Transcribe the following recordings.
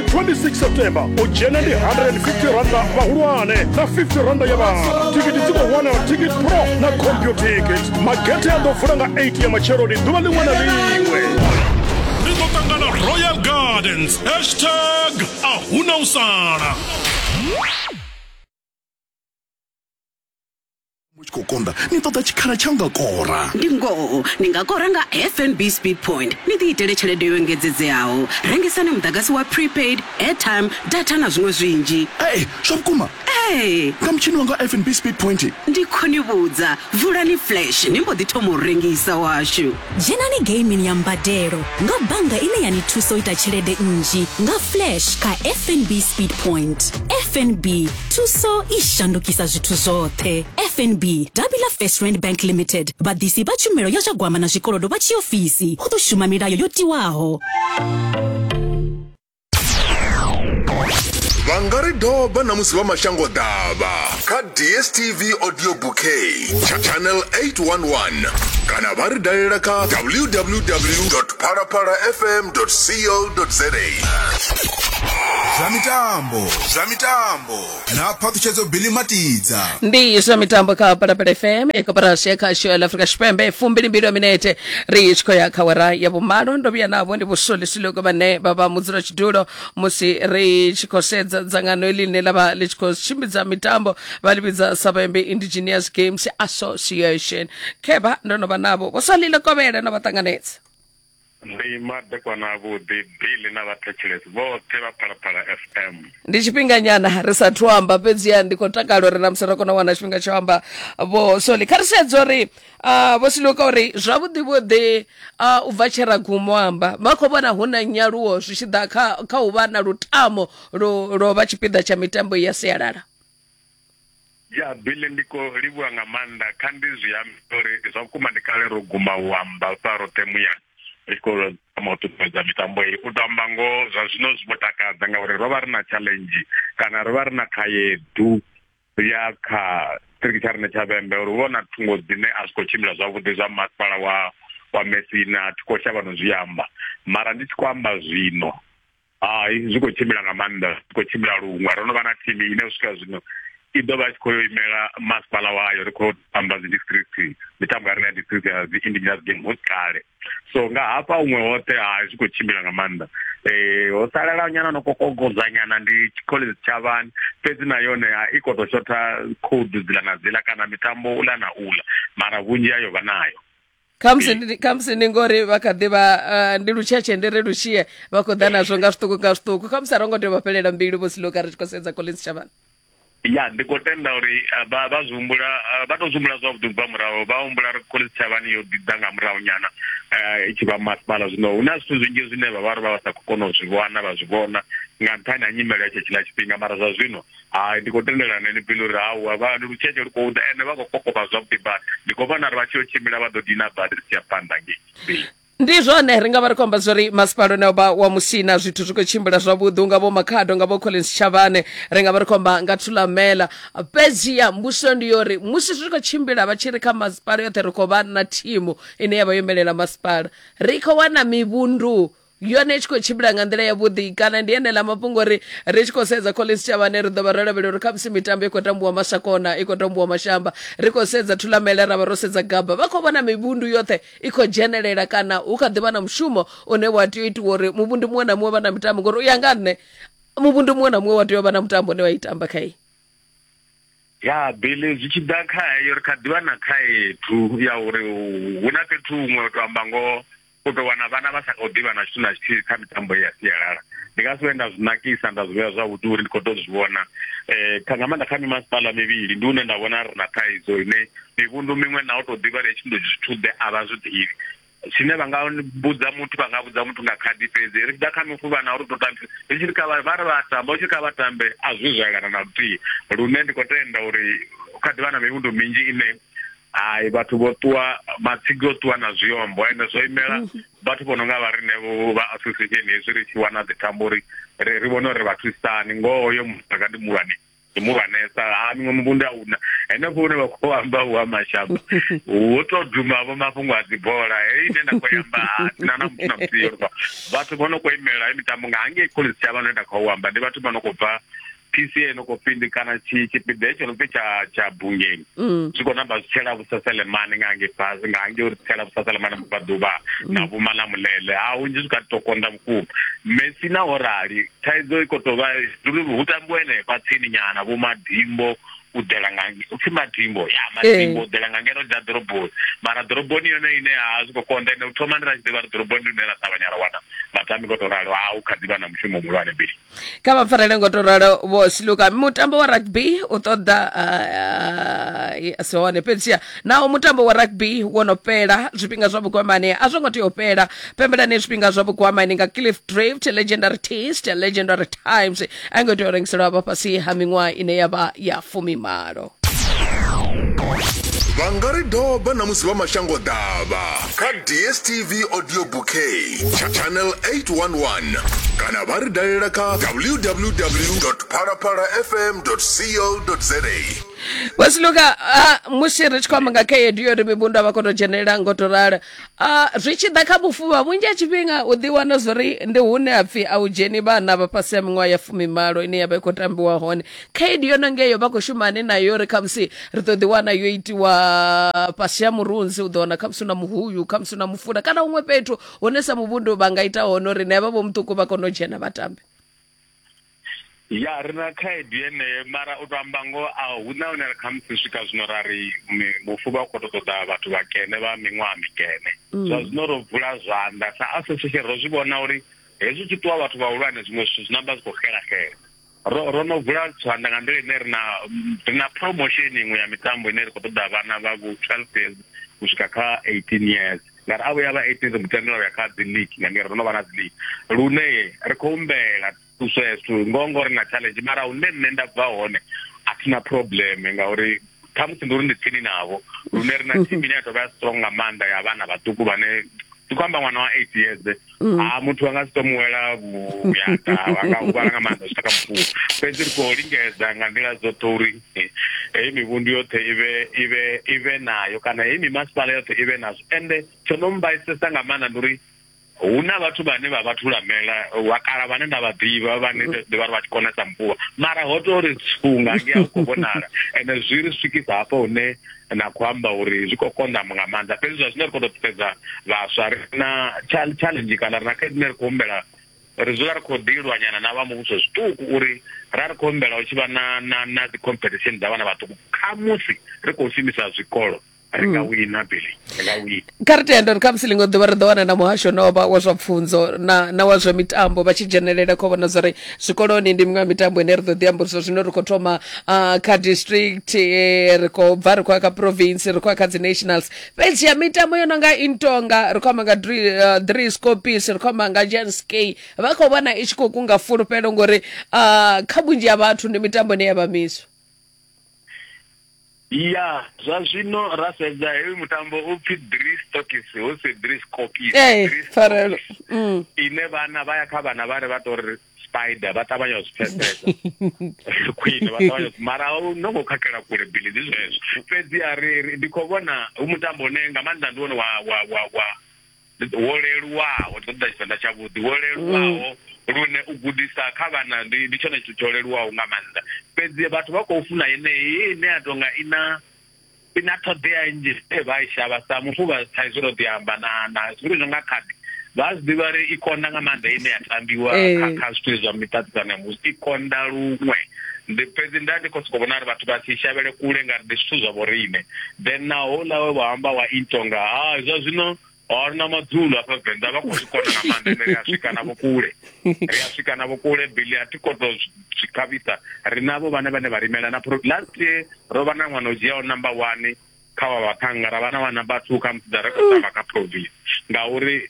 26 september u dzhena ndi 150 randa vhahulwane na 50 randa ya vhana thikiti dzi khou wanala ticket pro na computikit magethe a ḓo vula nga 8 ya matsheloni ḓuvha ḽiṅwe na ḽiṅwe ri ḓo ṱangana royal gardens hashtag a huna u sala mu tshi khou konḓa ni ṱoḓa tshikhala tsha nga kora ndi ngoho ni nga kora nga fnb speed point ni ḓiitele tshelede yo engedzedzeaho rengisani muḓagasi wa prepaid airtime data na zwiṅwe zwinzhi ee zwa vhukuma ee nga mutshini wanga fnb speed point ndi khoni vhudza vulani flash ni mbo ḓi thoma u rengisa washu dzhenani gaming ya mbadelo nga bannga ine ya ni thusa u ita tshelede nnzhi nga flash kha fnb speed point fnb thuso i shandukisa zwithu zwoṱhe fnb davhi ḽa first rand bank limited vhaḓisi vha tshumelo ya zwa gwama na zwikolodo vha tshiofisi hu ḓo shuma milayo yo tiwaho vha nga ri doba na musi vha mashango ḓavha kha dstv audio bouquet channel 811 kana vha ri dalela kha www phalaphala fm co za zwa mitambo zwa mitambo na phaṱhutshedzo bili matidza ndi zwa mitambo kha palapala fm ikoporasi ya khasho ya afrika tshipembe fumbili mbili ya minete ri tshi khou ya kha wera ya vhumalo ndo vhuya navho ndi vhusolisuluko vhane vha vha mudzula tshidulo musi ri tshi khou sedza dzangano ili ḽine ḽa vha ḽi tshi khou tshimbidza mitambo vha ḽi vhidza savembe indigenous games association khevha ndo no vha navho vho sa lile kovhele no vha ṱanganedza ndi madekwana avhuḓi bili na vhathetshelesi vhoṱhe vha phalaphala fm ndi tshifhinganyana ri sa thu amba fhedziha ndi khou takala uri na musi ri kona u wana tshifhinga tsho amba vho soli kha ri sedze uri uh, vho siliweka uri zwavhuḓi vhuḓi uh, u bva tshera gumo amba vha khou vhona hu na nyaluwo zwi tshi ḓa kha, kha u vha na lutamo lwo vha tshipiḓa tsha mitambo ya sialala Ya Billy ndi ko livhuwa nga maanḓa kha ndi zwi ambi uri zwa vhukuma ndi kale ro guma u amba u sa roṱhe muya ri tshi khou tama u ṱuṱuwedza mitambo iyi u to amba ngoho zwa zwino zwi vho takadza ngauri ro vha ri na challenge kana ro vha ri na khaedu ya kha tshiṱiriki tsha riṋe tsha vhembe uri hu vha na thungo dzine a zwi khou tshimbila zwavhuḓi zwa masipala wa wa mesina thi khou shavha no zwi amba mara ndi tshi khou amba zwino hai zwi khou tshimbila nga maanḓa zwi khou tshimbila luṅwe ro no vha na thimu ine u swika zwino i ḓo vha tshi khou yo imela masipala wayo ri khou tamba dzi district mitambo ya rina ya district ya dzi indigenous game ho kale so nga hafha huṅwe hoṱhe hai zwi khou tshimbila nga maanḓa um ho salela nyana no kokogodza nyana ndi college tshavhani fhedzi na yone i khou tou shotha khoudu dzila na dzila kana mitambo ula na ula mara vhunzhi yayo vha nayo khamusi ndi- khamusi ndi ngori vha kha ḓi vha ah, ndi lutshetshe ndi ri lushie vha khou ḓa nazwo nga zwiṱuku nga zwiṱuku khamusi a ro ngo tea u vha fhelela mbilu vho siloka ri tshi khou sedza collins shavhana ya ndi khou tenda uri eh, vha vha zwi humbula eh, vha tou zwi humbula zwavhuḓi ubva murahu vha humbula ri khole tshavhani yo ḓiḓa nga murahu nyana eh, i tshi vha masipala zwino hu na zwithu zwinzhi zwine vha vha ri vha vha sa khou kona u zwi vhona vha zwi vhona nga nṱhani ha nyimele ya tshe tshiḽa tshifhinga mara zwa zwino Hai ndi khou tendelana na ene Billy uri hawa vha ndi lutshetshe lu khou ḓa ende vha khou kokovha zwavhuḓi badi ndi khou vhona uri vha tshi yo tshimbila vha ḓo dina badi ri tshi ya phanḓa ngei Billy ndi zwone ri nga vha ri khou amba zwori masipala une vha wa musina zwithu zwi khou tshimbila zwavhuḓi unga vho makhado nga vho collins chavhane ri nga vha ri khou amba nga thulamela fhedziha mbuso ndi yori musi zwi khou tshimbila vha tshi ri kha masipala yoṱhe ri khou vha na thimu ine ya vha yo imelela masipala ri khou wana mivhundu yone i tshi khou tshimbila nga nḓila yavhuḓi kana ndi ene ḽa mafhungo ri ri tshi khou sedza collins tshavhane ri ḓo vha ro lavhelela uri khamusi mitambo i khou tambiwa masakona i khou tambiwa mashamba ri khou sedza thulamele ra vha ro sedza gaba vha khou vhona mivhundu yoṱhe i khou dzhenelela kana hu kha ḓivha na mushumo une wa tea u itiwa uri muvhundu muṅwe na muṅwe vha na mitambo ngori u ya nga nṋe muvhundu muṅwe na muṅwe wa tea u vha na mutambo une wa itamba kha iyi ya bele zwi tshi ḓa kha heyo ri kha ḓivha na khaedu ya uri hu na fhethu huṅwe u to amba ngoho u tou wana vhana vha sa khou ḓivha na tshithu na tshithihi kha mitambo ya sialala ndi nga si vhe nda zwi nakisa nda zwi vhea zwavhuḓi uri ndi khou tou zwi vhona um kha nga maanḓa kha mimasipala mivhili ndi hune nda vhona ri na thaidzo ine mivhundu miṅwe na u tou ḓivha ri tshi ndo zwithuḓe a vha zwi ḓivhi zwine vha nga vhudza muthu vha nga vhudza muthu nga khadi fhedzi ri tshi ḓa kha mufuvha na uri to tambe ri tshi ri kha vha vha ri vha tamba u tshi kha vha tambe a zwi zwo elana na luthihi lune ndi khou tenda uri kha ḓivha na mivhundu minzhi ine hai vhathu vho ṱuwa matsigi o ṱuwa na zwiombo ende zwo imela mhm. vhathu vho no nga vha riṋe vha association hezwi ri tshi wana dzitambo uri ri ri vhone uri ri vha thusani ngoho hoyo mutaka ndi muhulwane ndi muhulwanesa ha miṅwe muvhundu a una henefho hune vha khou amba hu ha mashamba hu to duma vho mafhungo a dzibola heyi ine nda khou amba na na muthu na muthihi vhathu vho no khou imela mitambo nga hangei khoḽisi tsha vha no nda khou amba ndi vhathu vha no khou bva PCA no khou fhindi kana tshi tshipiḓa hetsho no pfi tsha tsha bungeni mm. zwi khou namba zwi tshela vhusaselemane nga nge fhasi nga nge uri tshela vhusaselemane vhubva ḓuvha na mm. vhuma na mulele ha hunzhi zwi kha to konda vhukuma mesi na ho rali thaidzo i khou tou vha zwi hu tambiwa henefha tsini nyana vho madimbo u ḓela nga upfi madimbo ya madimbo u ḓela nga ngeno dza ḓoroboni mara ḓoroboni yone ine ya zwi khou konda ine u thoma ndi ra tshi ḓivha ri ḓoroboni ndi hune ra ṱavhanya ra wana matambi khou tou ralo ha u kha ḓi vha na mushumo muhulwane bili kha vha farele ngo to ralo vho siluka mutambo wa rugby u ṱoḓa uh, si hone fhedziha naho mutambo wa rugby wo no fhela zwifhinga zwa vhukwamani a zwo ngo tea u fhela pembelani zwifhinga zwa vhukwamani nga cliff drift legendary taste legendary times a i ngo tea u rengiselwa vha fhasi ha miṅwaha ine ya vha ya fumimalo vha nga ri doba na musi vha mashango ḓavha kha dstv audio bouquet tsha channel 811 kana vha ri dalela kha www phalaphala fm co za vhasiluka musi ri tshi khou amba nga khaedu yo ri mivhundu a vha khou tou dzhenelela ngo tou rala Uh, zwi tshi ḓa kha vhufuvha vhunzhi ha tshifhinga u ḓi wana zwori ndi hune ha pfhi a u dzheni vhana vha fhasi ha miṅwaha ya fumimalo ine ya vha i khou tambiwa hone khaedu yo no ngeyo vha khou shumani nayo uri khamusi ri ḓo ḓi wana yo itiwa fhasi ha murunzi u ḓo wana khamusi na muhuyu khamusi na mufula kana huṅwe fhethu hune sa muvhundu vha nga ita hone uri ne vha vho muṱuku vha kone u dzhena vha tambe ya ri na khaedu yeneyo mara u to amba ngoho a hu na hune kha musi swika zwino ra ri mufu vha khou to ṱoḓa vhathu vha kene vha miṅwaha mikene mm. zwa zwino ro vula zwanḓa sa association ro zwi vhona uri hezwi tshi ṱuwa vhathu vhahulwane zwiṅwe zwithu zwi namba zwi khou xela xela ro ro no vula zwanḓa nga nḓila ine ri na ri na promotion iṅwe ya mitambo ine ri khou ṱoḓa vhana vha vho twelve years u swika kha eighteen years ngari a vhuya vha eighteen ri mutendela uya kha dzi league nga ngeri ro no vha na dzi league lune ri khou humbela thuso ya zwithu ngoho ngori na challenge mara hune nṋe nda bva hone a thina problem ngauri khamusi ndi uri ndi tsini navho lune ri na thimu ine ya tovha ya strong nga maanḓa ya vhana vhaṱuku vhane ndi khou amba ṅwana wa eight years Mm. ha ah, muthu a nga si to muwela vhuyata a nga huvhala nga maanḓa zwi taka mufuwo fhedzi ri khou lingedza nga nḓila dzoṱhe uri eh, heyi mivhundu yoṱhe ivhe ivhe ivhe nayo kana heyi mimasipala yoṱhe ivhe nazwo ende tsho no mbaisesa nga maanḓa ndi uri hu na vhathu vhane vha vha thulamela wa kala vhane nda vha ḓivha vhane mm. ḓivha ri vha tshi konesa mvuvha mara ho to ri tsunga nge a u khou vhonala ende zwi ri swikisa hafho hune na khou amba uri zwi khou konḓa nga maanḓa fhedzi zwa zwine ri khou tou ṱuṱedza vhaswa ri na challenge kana ri na khaedu ine ri khou humbela ri dzula ri khou ḓilwanyana na vha muvhuso zwiṱuku uri ra ri khou humbela hu tshi vha na na na dzi competition dza vhana vhaṱuku khamusi ri khou shumisa zwikolo ri nga mm. wina bili ri nga wina kha ri tende uri kha musi ḽiṅwe ḓuvha ri ḓo wana na muhasho novha wa zwa pfunzo na, na wa zwa mitambo vha tshi dzhenelela kho vhona zwori zwikoloni ndi miṅwe ya mitambo ine ri ḓo ḓi amba uri zwa zwino ri khou thoma uh, kha district eh, ri khou bva ri khou ya kha province ri khou ya kha dzi nationals fhedzi ya mitambo yo no nga intonga ri khou amba nga dri uh, scopis ri khou amba nga jans k vha khou vhona i tshi khou kunga fulufhelo ngori uh, kha vhunzhi ha vhathu ndi mitambo ine ya vha miswa ya zwa zwino ra sedza heyi mutambo u pfi dris tokis hu si dris cokis ee pfarelo mm. ine vhana vha ya kha vhana vha ri vha tori spider vha ṱavhanya u zwi pfesesa khwine vha ṱavhanya mara no ngo khakhela kule bili ndi zwezwo fhedzi a ri ndi khou vhona hu mutambo une nga maanḓa ndi wone wa wa wa wa wo leluwaho ndi ṱoḓa tshivenḓa tshavhuḓi wo leluwaho mm. lune u gudisa kha vhana ndi ndi tshone tshithu tsho leluwaho nga maanḓa fhedzi vhathu vha khou funa yeneyi ine ya tonga i na i na ṱhoḓea nnzhi e vha i shavha sa mufu vha sa izwi ro ḓi amba na na zwithu zwi nga khadi vha zwi ḓivha ri i konda nga maanḓa ine ya tambiwa eh. kha zwithu zwa miṱaṱisano ya musi i konda luṅwe ndi fhedzi nda ndi khou sokou vhona uri vhathu vha si shavhele kule ngauri ndi zwithu zwa vhoriṋe then na houḽa we wa amba wa intonga ha zwa zwino or na madzulo afha venḓa vha khou zwi kona nga maanḓa ende ri a swika navho kule ri a swika navho kule bili a thi koto zwi khavhisa ri navho vhane vhane vha rimela na last year ro vha na ṅwana o dzhiaho number one kha vha vhaṱhanga ra vha na vha number two kha musi dza rekhotama kha province ngauri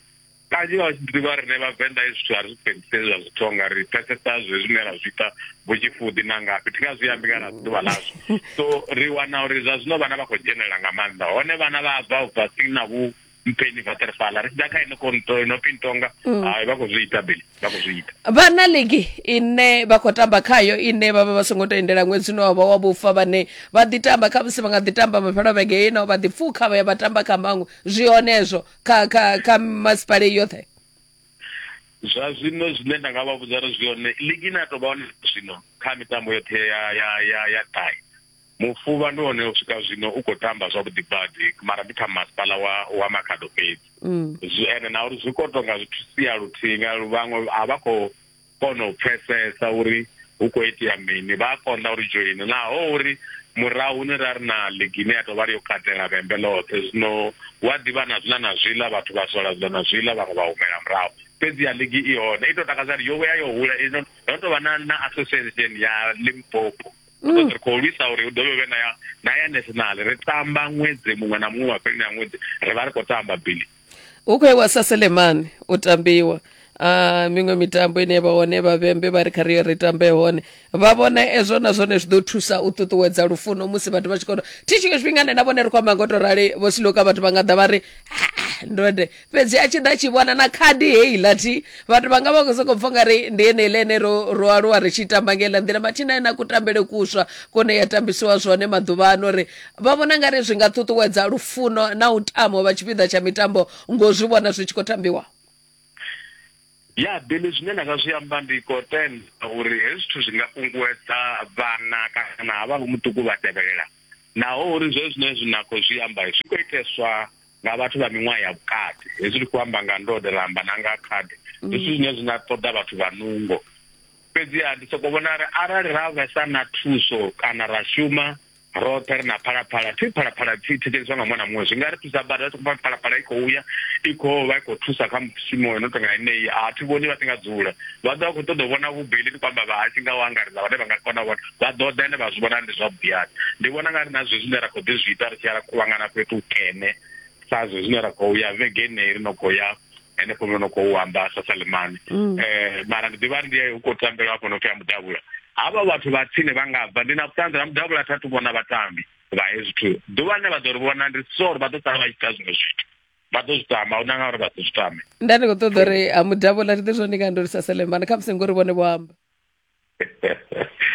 kanzhi vha tshi ḓivha rine vhavenḓa hezwi zwithu a ri zwi fhedziseli zwa zwithu nga ri pfesesa zwe zwine ra zwi ita vho tshifuḓi na ngafhi thi nga zwi ambi kana zwi ḓuvha ḽazwo so ri wana uri zwa zwino vhana vha khou dzhenelela nga maanḓa hone vhana vha bva ubva si na vhu mpeni vaterfala ri tshi ḓa kha ino konto ino pintonga mm. hai vha khou zwi ita beli vha khou zwi ita vha na ligi ine vha khou tamba khayo ine vha vha vha songo tendela ṅwedzi une wa vha wa vhufa vhane vha ḓi tamba kha musi vha nga ḓi tamba mafhelo vhege ino vha ḓi pfukha vha ya vha tamba kha maṅwe zwi hone ezwo kha kha kha masipale yoṱhe zwa zwino zwine nda nga vha vhudza ri zwi hone ligi ine ya tou vha hone zwino kha mitambo yoṱhe ya ya ya ya ṱahe mufuvha ndi hone u swika zwino u khou tamba zwavhuḓi badi mara ndi kha masipala wa wa makhado fhedzi mm. ende na uri zwi khou tonga zwithu sia luthihi nga vhaṅwe a vha khou kona u pfesesa uri hu khou itea mini vha a konḓa uri dzhoini naho uri murahu ni ra ri na ligi ine ya tou vha ri yo katela vhembe ḽoṱhe zwino hu a ḓivha na zwiḽa na zwiḽa vhathu vha sola zwiḽa na zwiḽa vhaṅwe vha humela murahu fhedzi ya ligi i hone i tou takadza ri yo vhuya yo hula ino ndo tou vha na na association ya limpopo mm. ri khou lwisa uri hu dovhe vhe na ya na ya national ri tamba ṅwedzi muṅwe na muṅwe mafheloni a ṅwedzi ri vha ri khou tamba bili u khou ewa sa selemani u tambiwa a miṅwe mitambo ine vha hone vhavhembe vha ri kha riyo ri tambe hone vha vhona ezwo na zwone zwi ḓo thusa u ṱuṱuwedza lufuno musi vhathu vha tshi kono thi tshiṅwe tshifhinga nṋe na vhone ri khou amba ngo to rali vho siloka vhathu vha nga ḓa vha ri "Ah, ndode fhedzi a tshi ḓa tshi vhona na khadi heiḽa thi vhathu vha nga vha khou sokou pfa nga ri ndi eneiḽa ene ro ro aluwa ri tshi tamba nga iḽa nḓila mathina ena kutambele kuswa kone ya tambisiwa zwone maḓuvha ano ri vha vhona nga ri zwi nga ṱuṱuwedza lufuno na u tama u vha tshipiḓa tsha mitambo ngo zwi vhona zwi tshi khou tambiwa ya bili zwine nda nga zwi amba ndi khou tenda uri hezwi zwithu zwi nga kunguwedza vhana kana havha vho muṱuku vha tevhelela naho uri zwe zwine zwi na khou zwi amba zwi khou iteswa nga vhathu vha miṅwaha ya vhukati hezwi ndi khou amba nga ndode ra amba na nga khadi mm. zwithu zwine zwi na ṱoḓa vhathu vha nungo fhedziha ndi sokou vhona uri arali ra vhesa na thuso kana ra shuma roṱhe ri na phalaphala thi phalaphala thi thetsheliswa nga mwana muṅwe zwi nga ri thusa bada ri khou phalaphala i khou ya i khou vha i khou thusa kha mushumo no tonga enei a thi vhoni vha si nga dzula vha ḓo vha khou ṱoḓa u vhona vhubeli ndi kwamba vha hasi nga u angaredza vhane vha nga kona vhona vha ḓo ḓa ende vha zwi vhona ndi zwavhuḓiani ndi vhona nga ri na zwe zwine ra khou ḓi zwi ita ri tshi ya ra kuvhangana fhethu hukene sa zwe zwine ra khou ya vhege enei ri no khou ya henefho no no khou amba sa salemani um mm. eh, mara ndi ḓivha ndi u khou tambelwa hafho no pfi a mudavhula havha vhathu vha tsini vha nga bva ndi na vhuṱanzi na mudavhula thathu vhona vhatambi vha hezwi thu ḓuvha ḽine vha ḓo ri vhona ndi so uri vha ḓo sala vha tshi ita zwiṅwe zwithu vha ḓo zwi tama u nanga uri vha ḓo zwi tame nda ndi khou ṱoḓa uri a mudavhula ri ḓe zwone ndi nga ndo ri sa salemani kha musi ngori vhone vho amba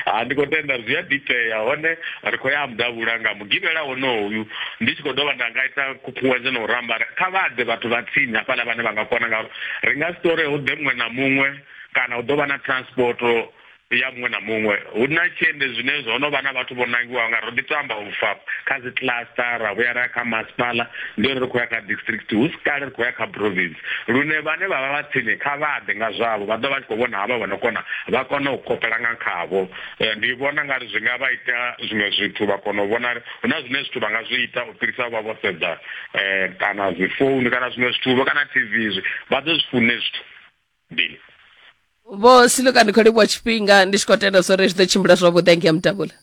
ha ndi khou tenda zwi a ḓiitea hone ri khou ya mudavhula nga mugivhela wonoyu ndi tshi khou dovha nda nga ita khukhunguwedzo na u ramba kha vha ḓe vhathu vha tsini hafhaḽa vhane vha nga kona ngauri ri nga si tore hu ḓe muṅwe na muṅwe kana hu ḓo vha na transport ya muṅwe na muṅwe hu na tshiende zwine zwo no vha na vhathu vho nangiwaho nga ro ḓi tamba u fa kha dzi cluster ra vhuya ra ya kha masipala ndi uri ri khou ya kha district hu si kale ri khou ya kha province lune vhane vha vha vha tsini kha vha ḓe nga zwavho vha ḓo vha tshi khou vhona havha vha no kona vha kona u kopela nga khavho eh, ndi vhona nga ri zwi nga vha ita zwiṅwe zwithu vha kona u vhona hu na zwine zwithu vha nga zwi ita u fhirisa vha vho sedza eh, kana dzi founu kana zwiṅwe zwithu vho kana tv zwi vha ḓo zwi fune zwithu mbili vho siluka ndi khou livhuwa tshifhinga ndi tshi khou tenda zwo ri zwi ḓo tshimbila zwavhuḓi angea mutambula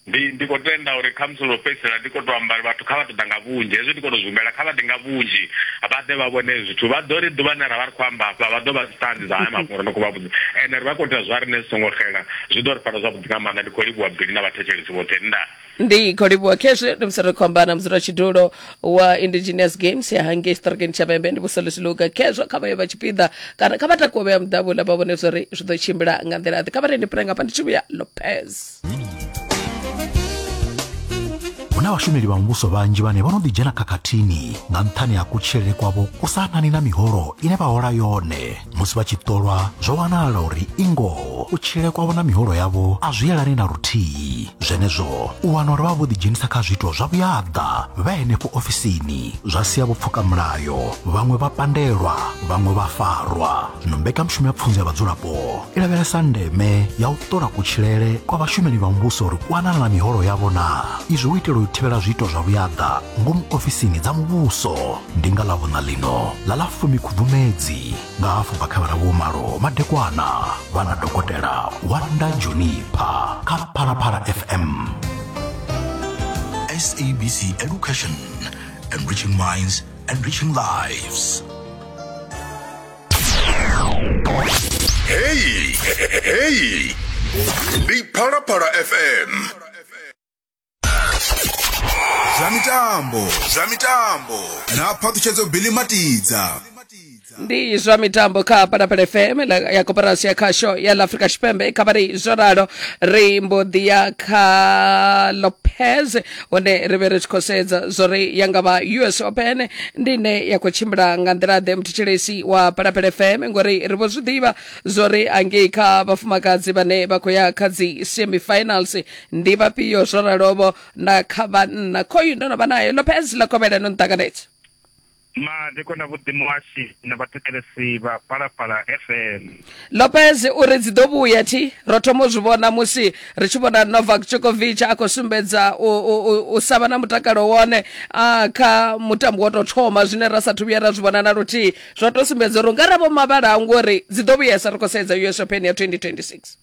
ndi ndi khou tenda uri kha musi ḽo fhedzisela ndi khou tou amba vhathu kha vha ṱoḓa nga vhunzhi hezwi ndi khou tou zwi humbela kha vha ḓe nga vhunzhi vha ḓe vha vhone zwithu vha ḓo ri ḓuvha ḽine ra vha ri khou amba hafha vha ḓo vha dzi ṱanzi dza haya mafhungo ri no khou vha vhudza ende ri vha khou ita zwa riṋe zwi songo xela zwi ḓo ri fara zwavhuḓi nga maanḓa ndi khou livhuwa bili na vhathetshelesi vhoṱhe nda ndi khou livhuwa khezwi ndi musi ri khou amba na mudzulatshidulo wa indigenous games ya hangei strokeni tshapembe ndi vhuselo zwiluga khezwo kha vhayo vha tshipiḓa kana kha vha takuwe vhea muḓavhula vha vhone zwori zwi ḓo tshimbila nga nḓila ḓi kha vha rendi pira ngafha ndi tshivhuya lopez hu na vhashumeli vha muvhuso vhanzhi vhane vho no ḓidzhena khakhathini nga nṱhani ha kutshilele kwavho ku sa anani na miholo ine vha hola yone musi vha tshi ṱolwa zwo wanala uri i ngoho kutshile kwavho na miholo yavho a zwi yelani na luthihi zwenezwo u wana uri vha vho ḓidzhenisa kha zwiito zwa vhuyaḓa vha henefho ofisini zwa sia vho pfuka mulayo vhaṅwe vha pandelwa vhaṅwe vha farwa zwino mbekanyamushumo ya pfunzo ya vhadzulapo i lavhelesa ndeme ya u ṱola kutshilele kwa vhashumeli vha muvhuso uri kwanana na miholo yavho na izwi u itela u thivhela zwiito zwa vhuyaḓa ngomu ofisini dza muvhuso ndi nga ḽa vhuṋa ḽino ḽa ḽa fumi khubvumedzi nga hafhu bva kha vhara vhomalo madekwana vha na dokotela wanda jonipha kha phalaphala fm sabc education enriching minds enriching lives heyi heyi ndi phalaphala fm zwa mitambo zwa mitambo na phaṱhutshedzo bili matidza ndi zwa mitambo kha palapala fm la- ya koporasi ya khasho ya la afrika tshipembe kha vhari zwo ralo ri mbo ḓi ya kha lopez hone ri vhe ri tshi khou sedza zwo ri ya nga vha us open ndi ine ya khou tshimbila nga nḓila ḓe muthetshelesi wa palapala fm ngori ri vho zwi ḓivha zwo ri angei kha vhafumakadzi vhane vha khou ya kha dzi semifinals ndi vhafhio zwo raloho na kha vhanna khoyu ndo no vha nayo lopez ḽa kovhela no nṱanganedza madeko na vhuḓimo washu na vhathetshelesi vha palapala fm lopez u ri dzi ḓo vhuya thi ro thoma u zwi vhona musi ri tshi vhona novak djokovic a khou sumbedza u, u, u, u sa vha na mutakalo wone a kha mutambo wo tou thoma zwine ra sathu vhuya ra zwi vhona na luthihi zwo tou sumbedza uri u nga ra vho mavhala ngori dzi ḓo vhuyesa ri khou sedza us open ya 2026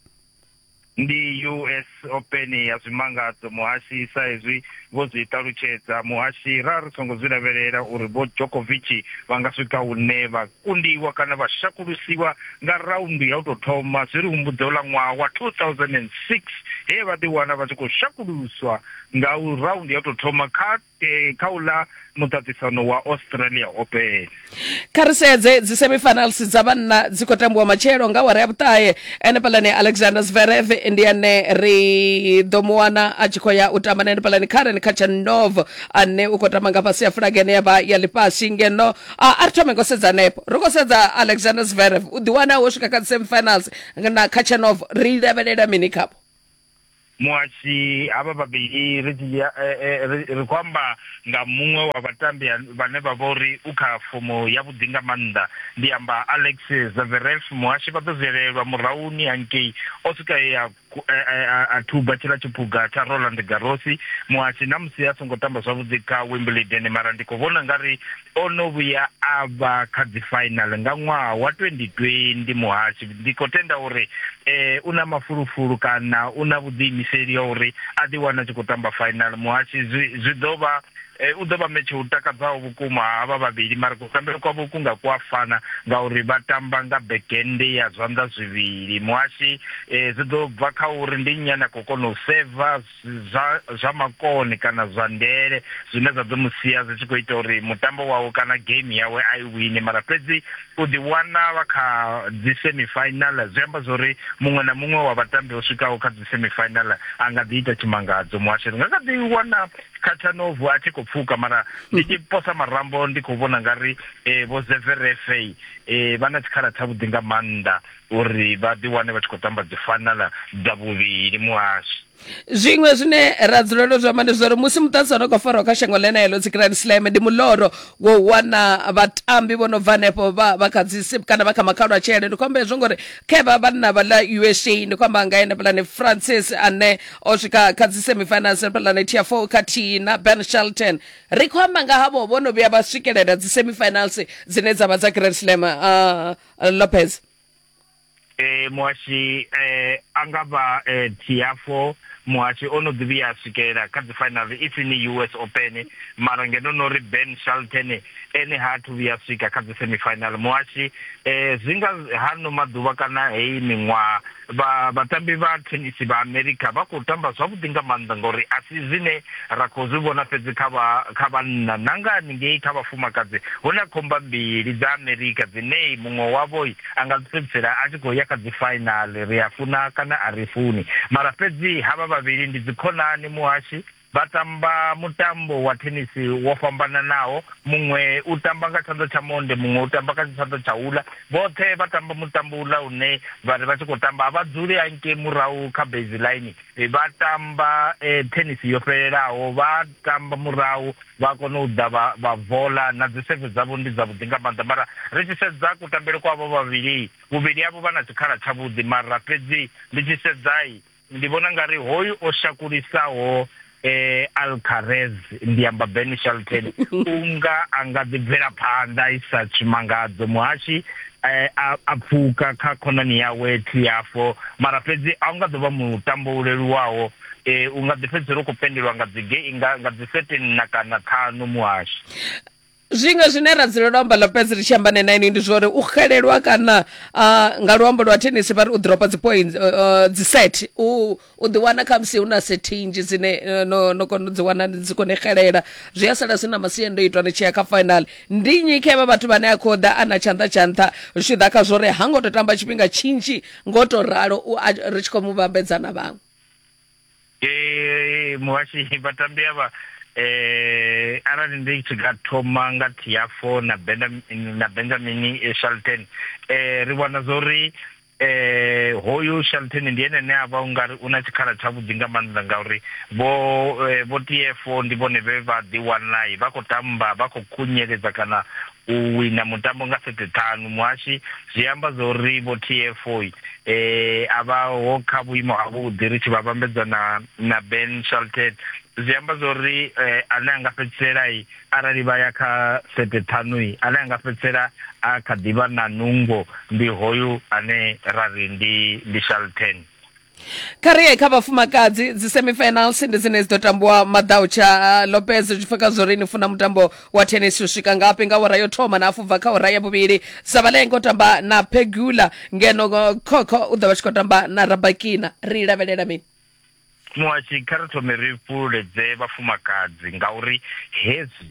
ndi US Open ya zwimangadzo muhashi sa hezwi vho zwi ṱalutshedza muhashi ra ri songo zwi lavhelela uri vho Djokovic vha nga swika hune vha kundiwa kana vha shakulusiwa nga raundu ya u tou thoma zwi ri humbudza uḽa ṅwaha wa 2006 he vha ḓi wana vha tshi khou shakuluswa nga u raundu ya u tou thoma kha e, kha u ḽa muṱaṱisano wa Australia Open. Kha ri sedze dzi semifinals dza vhanna dzi khou tambiwa matshelo nga wara ya vhuṱahe enefhaḽani Alexander Zverev ndi ane ri ḓo mu wana a tshi khou ya u tamba na enefhaḽani Karen Khachanov ane u khou tamba nga fhasi ya fulage ine ya vha ya ḽifhasi ngeno a ri thome ngo sedza hanefho ri khou sedza Alexander Zverev u ḓiwana wo swika kha dzi semifinals na Khachanov ri lavhelela mini khavho muhasshi havha vhavhili ri dzhia eh, eh, ri ri khou amba nga muṅwe wa vhatambi ha- vhane vha vha uri u kha fomo ya vhuḓi nga maanḓa ndi amba alex zaveref muhasshi vha ḓo zwelelwa murahuni hangei o swika e a ku- e- e- a- a thuba tshila tshiphuga tsha roland garosi muhasshi na musi a songo tamba zwavhuḓi kha wimbledon mara ndi khou vhona nga ri O no vhuya a vha kha dzi final nga ṅwaha wa 2020 muhashi ndi khou tenda uri eh u na mafulufulu kana u na vhuḓiimiseli ya uri a ḓi wana tshi khou tamba final muhashi zwi zwi ḓo vha Eh, u ḓo vha metshe u takadzaho vhukuma havha vhavhili mara kutambele kwavho ku nga ku a fana ngauri vha tamba nga bekende ya zwanḓa zwivhili muhashi um zwi ḓo bva kha uri ndi nnyi ane a khou kona u seva zwa zwa makone kana zwa ndele zwine zwa ḓo mu sia zwi tshi khou ita uri mutambo wawe kana game yawe a i wine mara fhedzi u ḓi wana vha kha dzi semi final zwi amba zwori muṅwe na muṅwe wa vhatambi o swikaho kha dzi semi final a nga ḓi ita tshimangadzo muhasho ri nga kha ḓi wana khathanovu a tshi khou pfuka mara ndi tshi posa marambo ndi khou vhona nga ri eh, vho zeverefe eh, vha na tshikhala tshavhuḓi nga maanḓa uri vha ḓi wane vha tshi khou tamba dzi fanala dza vhuvhili muhasho zwiṅwe zwine ra dzulela zwi amba ndi zwa uri musi muṱasi ono khou farwa kha shango ḽeneḽo dzi grand slam ndi muḽoro wo wana vhatambi vho no bva hanefho vha vha kha dzi sip kana vha kha makhalwa tshele ndi khomba hezwo ngori kha vha vhanna vha ḽa usa ndi khomba nga ene pulane francis ane o swika kha dzi semifinals pulane tia four khathihi na ben shelton ri khou amba nga havho vho no vhuya vha swikelela dzi semifinals dzine dza vha dza grand slam uh, uh, lopez e, muhashi e, a nga vha e, tiafo muhashi o no ḓivhi a swikelela kha dzi final if ni us open mara ngeno no ri ben shalton ene ha thu vhuya swika kha dzi semifinal muhashi e, zwi nga ha no maḓuvha kana heyi miṅwaha vha vhatambi vha thenisi vha amerika vha khou tamba zwavhuḓi nga maanḓa ngauri a si zwine ra khou zwi vhona fhedzi kha vha kha vhanna na nga haningei kha vhafumakadzi hu na khomba mbili dza amerika dzine muṅwe wavho a nga fhedzisela a tshi khou ya kha dzi fainali ri a funa kana a ri funi mara fhedzi havha vhavhili ndi dzikhonani muhashi Vha tamba mutambo wa thenisi wo fhambananaho, muṅwe u tamba nga tshanḓa tsha monde, muṅwe u tamba kha tshanḓa tsha uḽa. Vhoṱhe vha tamba mutambo uḽa une vha ri vha tshi khou tamba a vha dzuli hangei murahu kha baseline, vha tamba thenisi yo fhelelaho, vha tamba murahu vha kona u ḓa vha vha vola, na dzi seve dzavho ndi dzavhuḓi nga maanḓa. Mara ri tshi sedza kutambele kwa avho vhavhili, vhuvhili havho vha na tshikhala tshavhuḓi, mara fhedzi ndi tshi sedza Ndi vhona nga ri hoyu o shakulisaho eh, Alcarez ndi amba Ben Shelton unga a nga ḓi bvela phanḓa i sa tshimangadzo muhashi eh, a, a pfuka kha khonani yawe Tiafo mara fhedzi a u nga ḓo vha mutambo u leluwaho eh, u nga ḓi fhedzisela u khou pendelwa nga dzi nga, nga dzi 13 na kana ṱhanu muhashi zwiṅwe zwine ra dzulela u amba lopez ri tshi amba ne naini ndi zwori u xelelwa kana uh, nga luambo lwa tennis vha ri u dropa dzi point uh, uh, dzi set u u ḓi wana kha musi hu na sethinzhi dzine uh, no, no kona u dzi wana dzi kone xelela zwi a sala zwi na masiandoitwa ni tshi ya kha final ndi nnyi kha vha vhathu vhane a khou ḓa a na tshanḓa tsha nṱha zwi tshi ḓa kha zwori ha ngo to tamba tshifhinga tshinzhi ngo to ralo u a- ri tshi khou mu vhambedza na vhaṅwe ee muhashi vhatambi avha eh arali ndi tshi nga thoma nga Tiafo na Benjamin na Benjamin eh, Shelton eh ri vhona zori eh hoyu Shelton ndi ene ne avha ungari una tshikhala tsha vhuḓi nga maanḓa ngauri vho eh, vho Tiafo ndi vhone vhe vha ḓi wanai vha khou tamba vha khou khunyeledza kana u wina mutambo nga sete ṱhanu muhashi zwi amba zwa uri vho tfo a vha ho kha vhuimo ha vhuḓi ri tshi vha vhambedza na na ben shalted zwi amba zwa uri ane a nga fhedzisela arali vha ya kha sete ṱhanu ane a nga fhedzisela a kha ḓivha na nungo ndi hoyu ane ra ri ndi ndi shalten kha ri ye kha vhafumakadzi dzi semifinals ndi dzine dzi ḓo tambiwa maḓau tsha uh, lopez zwi bva kha zwori ni funa mutambo wa tennis u swika ngafhi nga hora yo thoma na afubva kha hora ya vhuvhili savalenge u tamba na pegula ngeno uh, khokho u ḓo vha tshi khou tamba na rabakina ri lavhelela mini muhashi kha ri thome ri fhululedze vhafumakadzi ngauri hezwi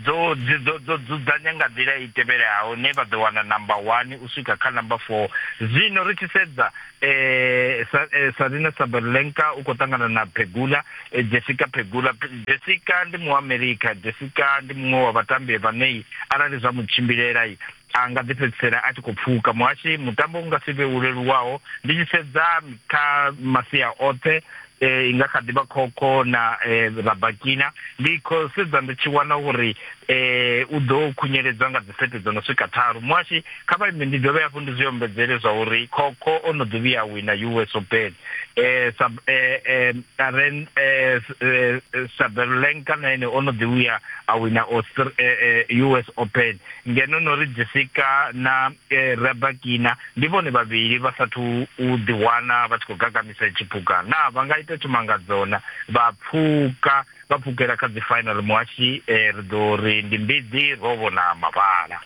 Dzo, dzi ḓo, ḓo dzudzanya nga nḓila i tevhelaho, ne vha ḓo wana namba wani u swika kha namba foo. Zwino ri tshi sedza, e, sa, e, Sarina Sabalenka u khou ṱangana na Pegula, e, Jessica Pegula. Pe, Jessica ndi Muamerika. Jessica ndi muṅwe wa vhatambi vhanei, arali zwa mu tshimbilela. a nga ḓi fhedzisela a tshi khou pfuka muhashi mutambo u nga si vhe u leluwaho ndi tshi sedza kha masia oṱhe eh, i nga kha ḓi vha khokho na eh, rabakina ndi khou sedza ndi tshi wana uri eh, u ḓo khunyeledza nga dzisete dzo no swika tharu muhashi kha vha ime ndi dovhe hafhu ndi zwi ombedzele zwa uri khokho o no ḓi vhuya wina us open eh, sub, eh, eh, aren, eh, eh, saberlenka na ene o no ḓi vhuya a wina Austra- eh, eh, us open ngeno no ri Jessica na e, Rebakina ndi vhone vhavhili vha sathu u ḓiwana vha tshi khou gagamisa tshipuka na vha nga ita tshumangadzona vha pfuka vha pfukela kha dzi final muhashi e, ri ḓo ri ndi mbiḓi ro vhona mavhala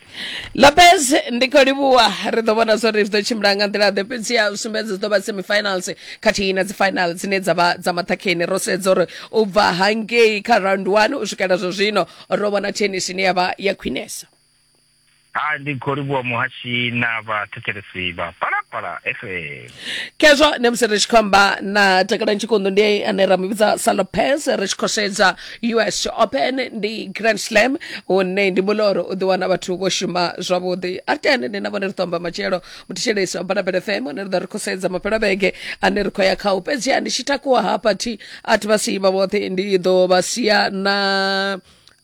lopez ndi khou livhuwa ri ḓo vhona zwori zwi ḓo tshimbila nga nḓila ḓe fhedzi ya sumbedza dzi ḓo vha semifinals khathihi na dzi final dzine dza vha dza maṱhakheni ro sedza uri u bva hangei kha round one u swikela zwa zwino ro vhona tennis ine ya vha ya khwinesa ha ndi khou livhuwa muhashi na vhathetshelesi vha palapala fm khezwo ne musi ri tshi khou amba na takala ntshikondo ndi ane ra mu vhidza sa lopez ri tshi khou sedza us open ndi grand slam hune ndi muloro u ḓiwana vhathu vho shuma zwavhuḓi a ri tende ndi na vhone ri ṱomba matshelo muthishelesi wa mbalapele fm ane ri ḓo ri khou sedza mafhelo a vhege ane ri khou ya khao fhedzi a ndi tshi takuwa hafha thi a thi vha siyi vha vhoṱhe ndi ḓo vha sia na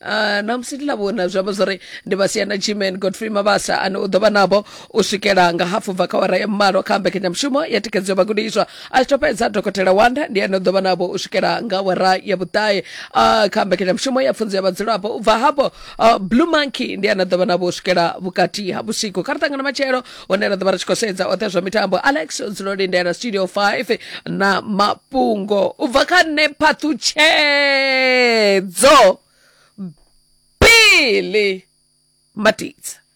Uh, namusi ndi lavhona zwi amba zwori ndi vha sia na gman godfrey mabasa ane u ḓo vha navho u swikela nga hafu bva kha wara ya mmalo kha mbekanyamushumo ya thikedzo ya vhagudiswa a tshi to fhedza dokotela wanda ndi ane u ḓo vha navho u swikela nga wara ya vhuṱae uh, kha mbekanyamushumo ya pfunzo ya vhadzulapo u bva hafho Uh, blue monkey ndi ana ḓovha navho u swikela vhukati ha vhusiku kha ri ṱangana matshelo hone ra ḓovha ri tshi khou sedza oṱhe zwa mitambo alex dzulo lindela studio 5 na mafhungo u bva kha nṋe phaṱhutshedzo bili matidza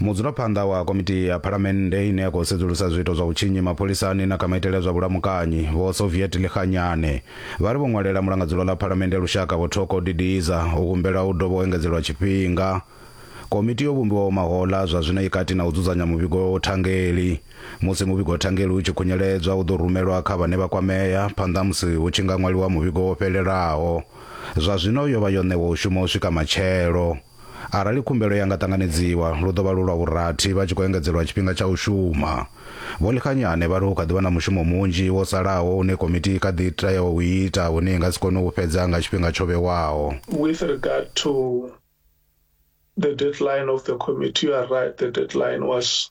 Mudzulaphanḓa wa Komiti ya Phalamennde ine ya khou sedzulusa zwiito zwa vhutshinyi mapholisani na kha maitele a zwa vhulamukanyi, Vho Soviet Likganyane, vha ri vho ṅwalela Mulangadzulo ḽa Phalamennde ya Lushaka, Vho Thoko Didiza, u humbela u dovha u engedzelwa tshifhinga. Komiti yo vhumbiwaho mahoḽa zwa zwino i kati na u dzudzanya muvhigo thangeli. Musi muvhigo thangeli u tshi khunyeledzwa, u ḓo rumelwa kha vhane vha kwamea phanḓa ha musi hu tshi nga ṅwaliwa muvhigo wo fhelelaho. Zwa zwino yo vha yo ṋewa u shuma u swika matshelo. Arali khumbelo ya nga ṱanganedziwa, lu ḓo vha lu lwa vhurathi vha tshi khou engedzelwa tshifhinga tsha u shuma. Vho Likganyane vha ri hu kha ḓi vha na mushumo munzhi wo salaho une komiti i kha ḓi tea u ita une i nga si kone u fhedza nga tshifhinga tsho vhewaho. With regard to the deadline of the committee, you are right, the deadline was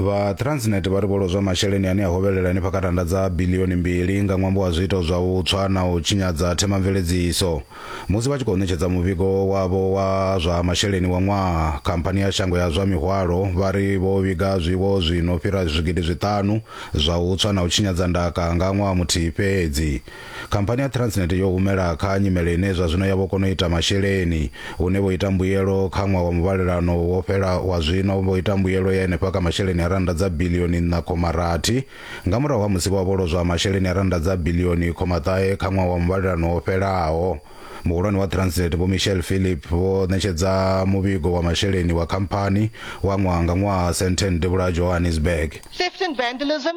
vha transnet vha ri vho lozwa masheleni ane a hovhelela henefha kha randa dza bilioni mbili nga ṅwambo wa zwiito zwa u tswa na u tshinyadza themamveledziso musi vha tshi khou ṋetshedza muvhigo wavho wa zwa masheleni wa ṅwaha khamphani ya shango ya zwa mihwalo vha ri vho vhiga zwiwo zwi no fhira zwigidi zwiṱanu zwa u tswa na u tshinyadza ndaka nga ṅwaha muthihi fhedzi Khamphani ya Transnet yo humela kha nyimele ine zwa zwino ya vho kona u ita masheleni, hune vho ita mbuyelo kha ṅwaha wa muvhalelano wo fhela wa zwino vho ita mbuyelo ya henefha kha masheleni a rannda dza biḽioni nṋa khoma rathi, nga murahu ha musi vho vha vho lozwa masheleni a rannda dza biḽioni khoma ṱahe kha ṅwaha wa muvhalelano wo fhelaho. Muhulwane wa Transnet Vho Michelle Philip vho ṋetshedza muvhigo wa masheleni wa khamphani wa ṅwaha nga ṅwaha sentheni devhula ha Johannesburg. Theft and vandalism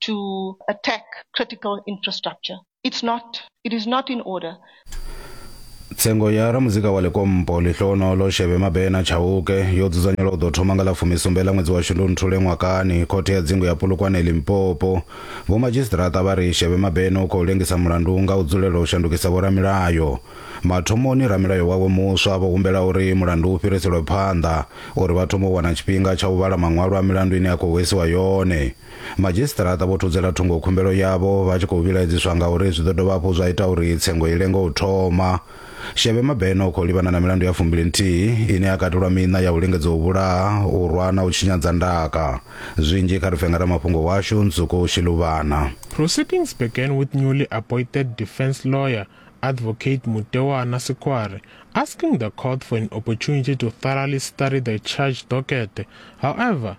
to attack critical infrastructure. It's not. It is not in order. tsengo ya ramuzika wa lekompo lihlohonolo shebe mabena chauke yo dzudzanyelwa u ḓo thoma nga ḽa fumisumbe ḽa ṅwedzi wa shundunthule ṅwakani khothe ya dzingu ya pulukwane limpopo vhomadzhisiṱiraṱa vha ri shebe mabena u khou lengisa mulandu nga u dzulela u shandukisa vhoramilayo mathomoni ramilayo wawe muswa vho humbela uri mulandu u fhiriselwe phanḓa uri vha thome u wana tshifhinga tsha u vhala maṅwalo a milandu ine ya khou hwesiwa yone Madzhisiṱiraṱa vho thudzela thungo khumbelo yavho vha tshi khou vhilaedziswa ngauri zwi ḓo dovha hafhu zwa ita uri tsengo i lenge u thoma. Shebe Mabena u khou livhana na milandu ya fumbili nthihi ine ya katelwa miṋa ya u lingedza u vhulaha, u rwa na u tshinyadza ndaka. Zwinzhi kha ri pfe nga ramafhungo washu Nzuko Shiluvhana. Proceedings began with newly appointed defence lawyer, Advocate Mutewana Sikware, asking the court for an opportunity to thoroughly study the charge docket. However,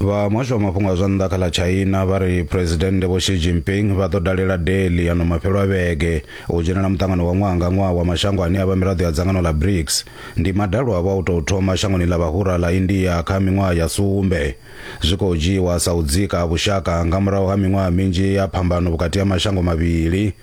vha muhasho wa mafhungo a zwa nnḓa kha ḽa china vha ri phuresidennde vho xi jinping vha ḓo dalela delhi ano mafhelo a vhege u dzhenela muṱangano wa ṅwaha nga ṅwaha wa mashango ane a vha miraḓo ya dzangano ḽa brics ndi madalo avho a u tou thoma shangoni ḽa vhahura ḽa india kha miṅwaha ya sumbe zwi khou dzhiiwa sa u dzika vhushaka nga murahu ha miṅwaha minzhi ya phambano vhukati ha mashango mavhili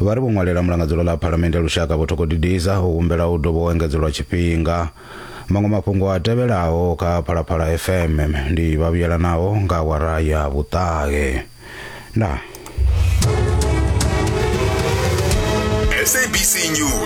Vha ri vho ṅwalela Mulangadzulo ḽa Phalamennde ya Lushaka Vho Thoko Didiza u humbela u dovha u engedzelwa tshifhinga. Maṅwe mafhungo a tevhelaho kha Phalaphala FM ndi vha vhuyelanaho nga awara ya vhuṱahe. Ndaa. SABC News.